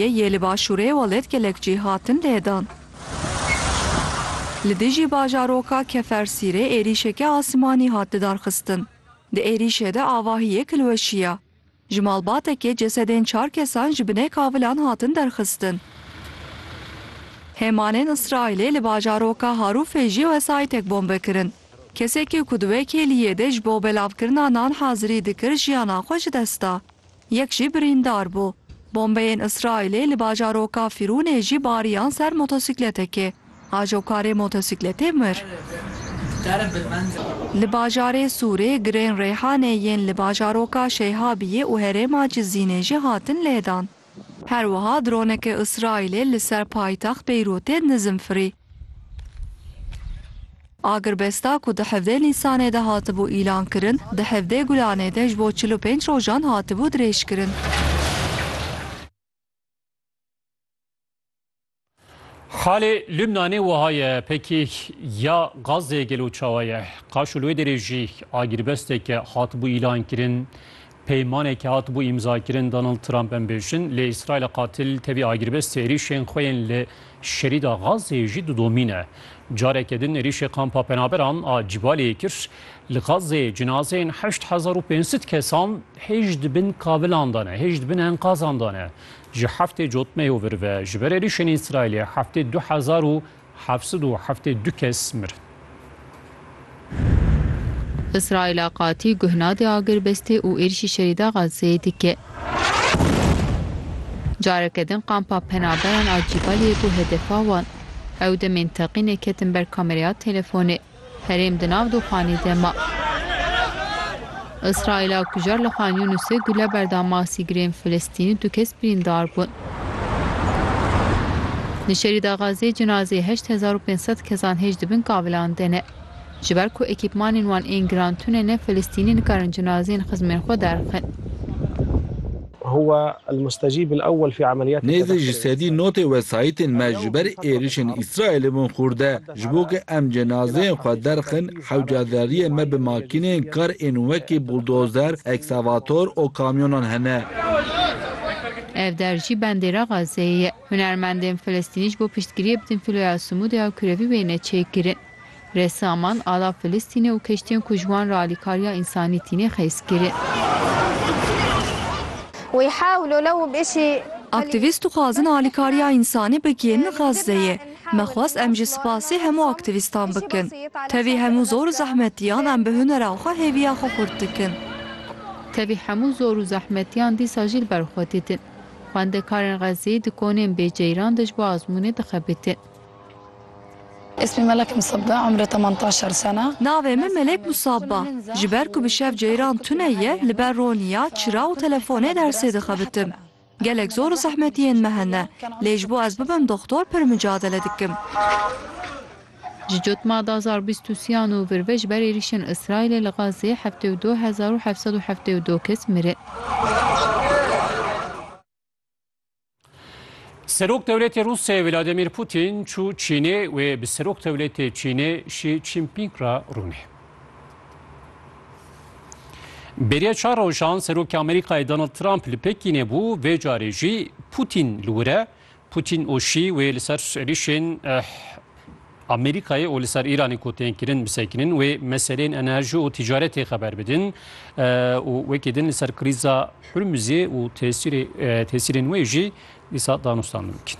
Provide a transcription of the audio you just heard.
yê li başûrê welêt gelek cih hatin lêdan. Li dijî bajaroka Kefersîrê êrîşeke asmanî hat lidarxistin. Di êrîşê de avahiyek li we şiya. Ji malbatekê cesedên çar kesan ji binê kavilan hatin derxistin. Hêmanên Îsraîlê li bajaroka Harûfê jî wesayîtek bombe kirin. Kesekî ku di wê kêliyê de ji bo belavkirina nan hazirî dikir jiyana xwe ji dest da. Yek jî birîndar bû. Bombeyên Îsraîlê li bajaroka Fîrûnê jî bariyan ser motosîkletekê. Ajokarê motosîkletê mir. Li bajarê Sûrê girên Reyhanê yên li bajaroka Şeyhabiyê û herêma Cizînê jî hatin lêdan. Her wiha droneke Îsraîlê li ser paytext Beyrûtê nizm firî. Agirbesta ku di hevdeh Nîsanê de hatibû îlankirin, di hevdeh Gulanê de ji bo çil û pênc rojan hatibû dirêjkirin. Xalê Lubnanê wiha ye, Pekîk ya Gazê gelo çawa ye? Qaşo li wê derê jî agirbesteke hatibû îlankirin Peymanekî hatibû îmzakirin Donald Trump em bêjin lê Îsraîlê qatil tevî agirbestê êrîşên xwe yên li Şerîda Gazeyê jî didomîne. Careke din êrîşê Kampa Penaberan a Cîbaliyê kir. Li Gazeyê cinazeyên heşt hezar û pênc sed kesan hêj di bin kavilan de ne, hêj di bin enkazan de ne. Ji heftê cotmeyê vir ve ji ber êrîşên Îsraîlê heftê du hezar û Heft sed û heftê du kes mirin. Îsraîla qatî guh nade agirbestê û êrîşî şerî da Xazzeyê dike. Careke din kampa penaberan a Cîbaliyê bû hedefa wan. Ew demên teqînê ketin ber kamereya telefonê. Herêm di nav doxanê de ma. Îsraîla kujar li Xan Yûnusê gule berda masî girên Filistînî du kes birîndar bûn. Li Şerîda Xazzê cinazeyê heşt hezar û pênc sed kesan hêj dibin kavilan de ne. Ji ber ku ekîpmanên wan ên giran tune ne Filistînî nikarin cinazeyên xizmên xwe derxin. Nêzî ji sedî notê wesayîtên me ji ber êrişên Îsraîlê bûn xûrde. Ji bo ku em cenazeyên xwe derxin, hewca zerriyê me bi makîneyên kar ên wekî buldozer, eksavator û kamyonan hene. Ev der jî bandêra Gazeyê ye. Hunermendên Filistînî ji bo piştgiriyê bidin Filoya Sumûdê ya kurevî wêne çêkirin. Ressaman, ala Filistînê û keştiyên ku ji wan re alîkariya însanî tîne xêz kirin. Aktîvîst dixwazin alîkariya însanî bigihînin Gazeyê. Me xwest em jî spasê hemû aktîvîstan bikin. Tevî hemû zor û zehmetiyan em bi hunera xwe hêviya xwe xurt dikin. Tevî hemû zor û zehmetiyan dîsa jî li ber xwe didin. Xwendekarên Xezzeyî di konên bê ceyran de ji bo azmûnê dixebitin. Ismi Melek Musabba, umri teman taşer sene. Navê min Melek Musabba. Ji ber ku bi şev ceyran tune ye, li ber roniya, çira û telefonê dersê dixebitim. Gelek zor û zehmet yên me hene, lê ji bo ez bibim doxtor pir micadele dikim. Ji cotma da zar bîst û siyan û vir ve ji ber êrîşên Îsraîlê li Xazzê heftê û du hezar û heft sed û heftê û du kes mirin. Serok dewletê Rûsê Vladimîr Pûtîn çû Çînê wê bi Serok dewletê Çînê Şî Çînpîng re rûnê. Bêriya çar rojan Serokê Amerîkayê Donald Trump li Pekînê bû, vê carê jî Pûtîn li wir e. Pûtîn û Şî wê li ser êrîşên Amerîkayê û li ser Îranê ku tên kirin bisekinin wê meseleyên enerjî û tîcaretê xeber bidin û wekî din li ser krîza Hurmuzê û tesîrên wê jî dîsa danûstandin bikin.